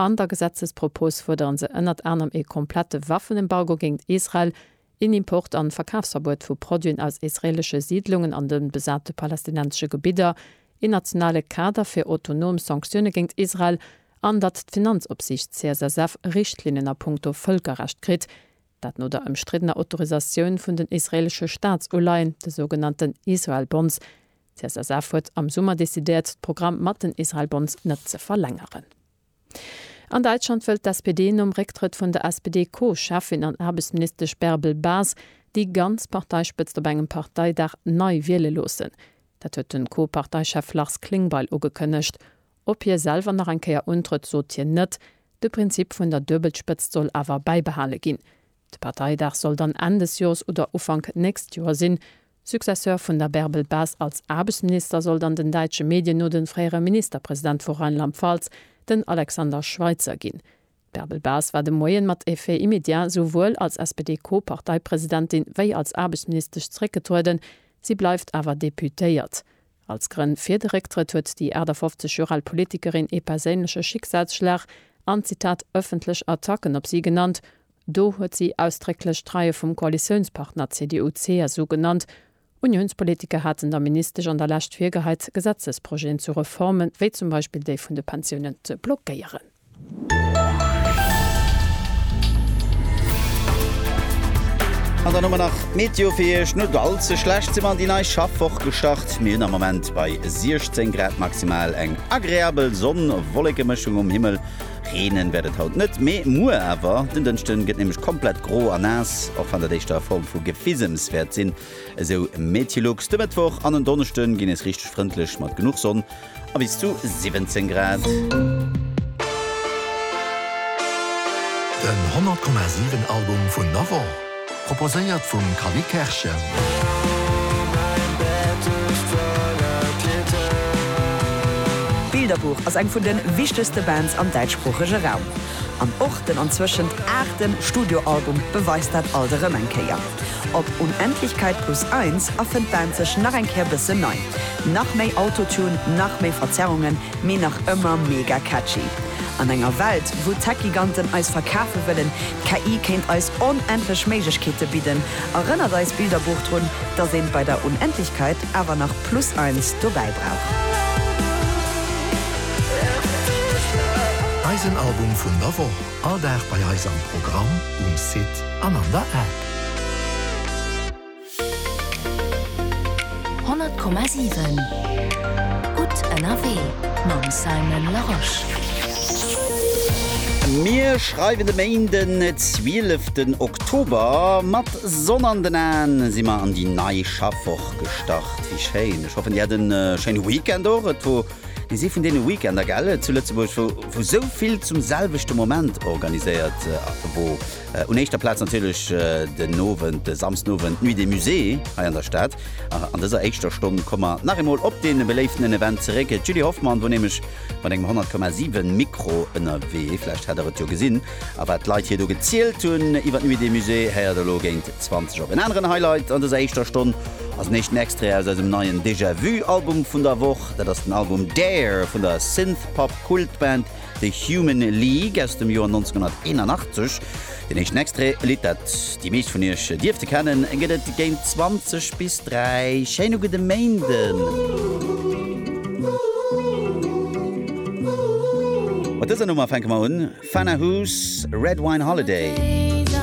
An der Gesetzespropos fuerderen se ënnert anerem ee komplette Waffenembargo géint Israel, een Import an Verkafsverbuet vu Produiten aus israelesche Siidlungen an de besate palästinensesche Gebidder, een nationale Kader fir autonom Sanktioune géint Israel an datt d'Finanzopsiicht CSSF Richtlinnen a punkto Vëlkerrecht kritt, dat no der ëmstriddener Autorisatioun vun den israelesche Staatsuleihen, de sougenannten Israel Bonds, D'CSSF huet am Summer decidéiert, d'Programm mat den Israel Bonds net ze verlängeren. An Däitschland wëllt d'SPD nom Récktrëtt vun der SPD-Co-Cheffin an Aarbechtsministesch Bärbel Bas déi ganz Parteispëtzt op engem Parteidag nei wiele loossen. Dat huet de Co-Parteichef Lars Klingbeil ugekënnegt. Ob hie selwer nach eng Kéier untrëtt, sot hien net. De Prinzip vun der Duebelspëtzt soll awer bäibehale ginn. De Parteidag soll dann Enn des Joers oder Ufank nächst Joer sinn, Successeur vun der Bärbel Bas als Aarbechtsminister soll dann den däitsche Medien no de fréiere Ministerpresident vu Rheinland-Pfalz, den Alexander Schweitzer ginn. D'Bärbel Bas war de Moien mat Effet immédiat souwuel als SPD-Co-Parteipresidentin wéi als Aarbechtsministesch zeréckgetrueden, si bleift awer Deputéiert. Als Grënn fir de Récktrëtt huet déi 58 Joer al Politikerin ee perséinleche Schicksalsschlag an, Zitat, ëffentlech Attacken op si genannt. Do huet si ausdrécklech d'Reie vum Koalitiounspartner CDU-CSU genannt. Uniounspolitiker haten der Ministesch an der Lescht virgeheit, Gesetzesprojeten zu Reformen, wéi zum Beispill déi vun de Pensiounen, ze blockéieren. An dann hu mer nach d'Meteo fir Iech. Nut all ze schlecht si mer an déi nei Schaffwoch gestart. Mir hunn am Moment bei 16 Grad maximal eng agreabel Sonn-Wollekemëschung um Himmel. Reenen wäert et haut net, mee muer awer. Den Dënschden gëtt nämlech komplett gro a naass, och wann dat éischter a Form vu Gefisems wäert sinn, esou Metilux. De Mëttwoch an en Donneschden ginn nees richteg frëndlech mat genuch Sonn a bis zu 17 Grad. Den 100,7 Album vun der Woch. Proposéiert vum Callie Kerschen. Bilderbuch ass eng vun de wichtegste Bands am däitschsproochege Raum. An och den anzwëschent aachte Studioalbum beweist dat alt erëm eng Kéier. Op Unendlichkeit plus eins erfënnt d'Band sech nach eng Kéier bëssen nei. Nach méi Autotune, nach méi Verzerrungen, mee nach ëmmer mega catchy. An enger Welt, wou d'Tech-Giganten eis verkafe wëllen, D'KI kéint eis onendlech Méiglechkeete bidden, erënnert eist Bilderbuch drun, dass een bei der Unendlichkeit awer nach plus eins dobäi brauch. Eisen Album vun der Woch, all Dag bei eis am Programm, um Site an an der App. Honnert Komma siwen Gutt ënnerwee mam Simon Larosche. Mir schreiwen de Méinden 12 ten Oktober. Mat Sonn an den Aen si mer an déi nei Schaffwoch gestart. Wéi schéin! Ech hoffen dir hat en schéine Weekend och. Et wor nees ee vun deene Weekender, gell, zu Lëtzebuerg wou sou vill zum selwechte Moment organiséiert wor. Un éischter Plaz natierlech den Owend, de Samsdenowend, d'Nuit des Musées hei an der Stad. An dëser éischter Stonn komme mer nach eemol op dee beléiften Event zeréck. D'Julie Hoffmann wor nämlech mat engem 100,7 Mikro ënnerwee, vläicht hat der et jo gesinn, a wat d'Leit hir do gezielt hunn iwwer d'Nuit des Musées, héiert elo géint 20 op. En aneren Highlight an dëser éischter Stonn ass en éischten Extrait aus eisem neien Déjà-Vu-Album vun der Woch. Dat ass den Album Dare vun der Synthpop-Kultband The Human League aus dem Joer 1981. Den éischten Extrait, e Lidd, dat déi meescht vun iech dierfte kennen, gëtt et géint 20 bis 3. Schéin uge de Méinden! Mat dëser Nummer fänke mer un, Fana Who's Red Wine Holiday.